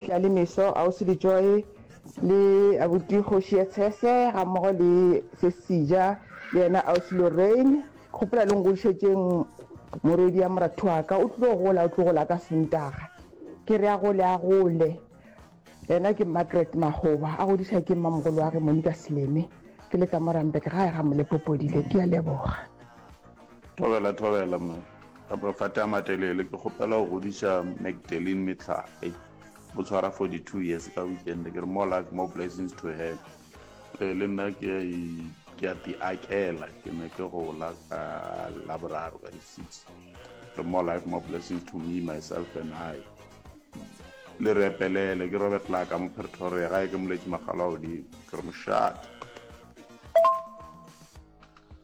Tla le meso, Ausi Lejoe le Abuti Kgoši ya Tshese gammogo le Sesija le yena Ausi Lorraine. Ke gopola le ngodišetšeng morwedi ya moratu wa ka. O tlo gola, o tlo gola ka Sontaga. Ke re a gole, a gole. Yena ke Margaret Makgoba, a godiša ke mmamogolo wa ge Monika Seleme. Ke le ka mo Randburg gae ga Molepopodile. Ke a leboga. Thobela, thobela, mma. Ka mafate a matelele, ke kgopela go godiša Magdalene Metlhale. O tshwara 42 years ka weekend. Ke re more life, more blessings to her. Ee, le nna ke a i- ke a ti akela. Ke ne ke gola ka Laboraro ka di six. Re more life, more blessings to me, myself and I. Le re epelele, ke Robert Laka mo Pretoria, gae ke Moletši Makgalo a Godimo. Ke re mošate.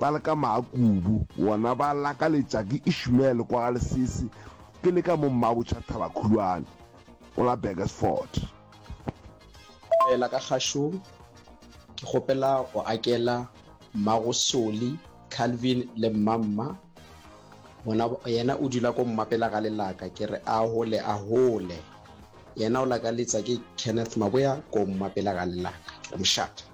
Ba le ka maa kubu, bona ba lakaletša ke Ishmael kwa ga Lesese, ke le ka mo Mmabotšha Thaba-khulwane, o la Burgersfort. Fela ka kgašong, ke kgopela go akela Mmago Soli, Calvin le Mmamma, bona yena o dula ko mmapela ga lelaka, ke re ahole ahole. Yena o lakaletša ke Kenneth Maboya ko mmapela ga lelaka, ke re mošate.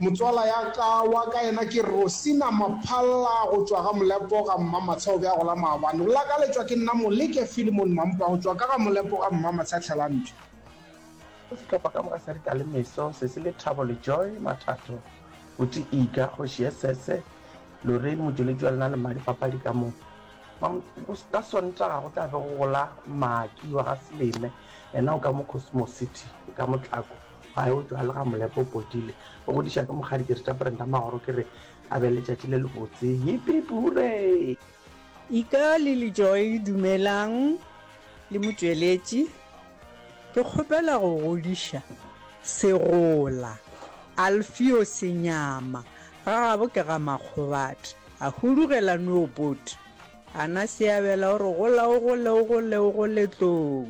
Motswala ya ka wa ka yena ke Rosina Maphalla go tšwa ga Molepo ga Mmamatsha o be a gola maabane. O lakaletšwa ke nna Moleke Philemon Mampa go tšwa ka ga Molepo ga Mmamatsha Tlhelampša. Go sehlopha ka moka sa Dikalemeso se se le Thabo Lejoy Mathatho, Buti Iga, Kgoši Esese, Lorraine Motšweletši wa lena le Mmadi Papadi ka mo. Ka Sontaga go tla be go gola Mmaki wa ga Seleme yena o ka mo Cosmos City ka Motlako. A eupša le ga Molepo o potile, o godiša ka mokgadi ke re tša Brenda Magoro ke re a be letšatši le lebotse. Yipip! Hooray! Ika le Lejoy dumelang le motšweletši. Ke kgopela go godiša segola Alfio Senyama, ga gabo ke ga Makgobathe, a hudugela Noopot. Ana Seabela o re gola o gole o gole o gole tlou.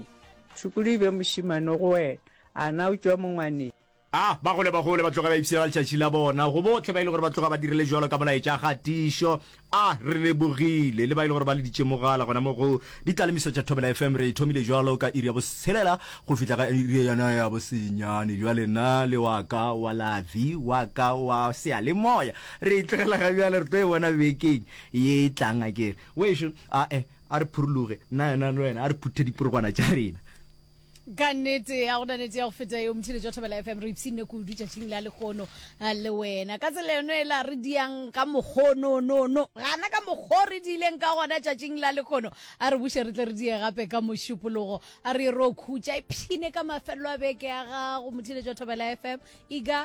Tšhukudu e be mošemane go wena. A na o tšwa mongwaneng? A ba gole ba gole, ba tloge ba ipshiela letšatši la bona, go bohle ba e le gore ba tloga ba dirile bjalo ka molaetša a kgatišo. A re lebogile le ba e le gore ba leditše mogala gona mo go Ditlalemiso tša Thobela FM. Re e thomile bjalo ka iri ya botshelela go fihla ka iri yona ya bosenyane. Bjale na le wa ka wa lavi, wa ka wa seyalemoya, re e tlogela ga bjale, re tlo e bona bekeng ye e tlang akere. Wešo, a-e, a re phuruloge, nna yona le wena a re phuthe diporogwana tša rena. Ka nnete, ga gona nete ya go feta eo. Motheletši wa Thobela FM, re ipshinne kudu tšatšing la lekgono eh, le wena. Ka tsela yone ela re diang ka mokgononono, gana ka mokgo re diileng ka gona tšatšing la lekgono. A re buše re tle re die gape ka mošupologo, a re ye ro khutša. Ipshine ka mafelelo a beke ya gago, motheletši wa Thobela FM. Iga.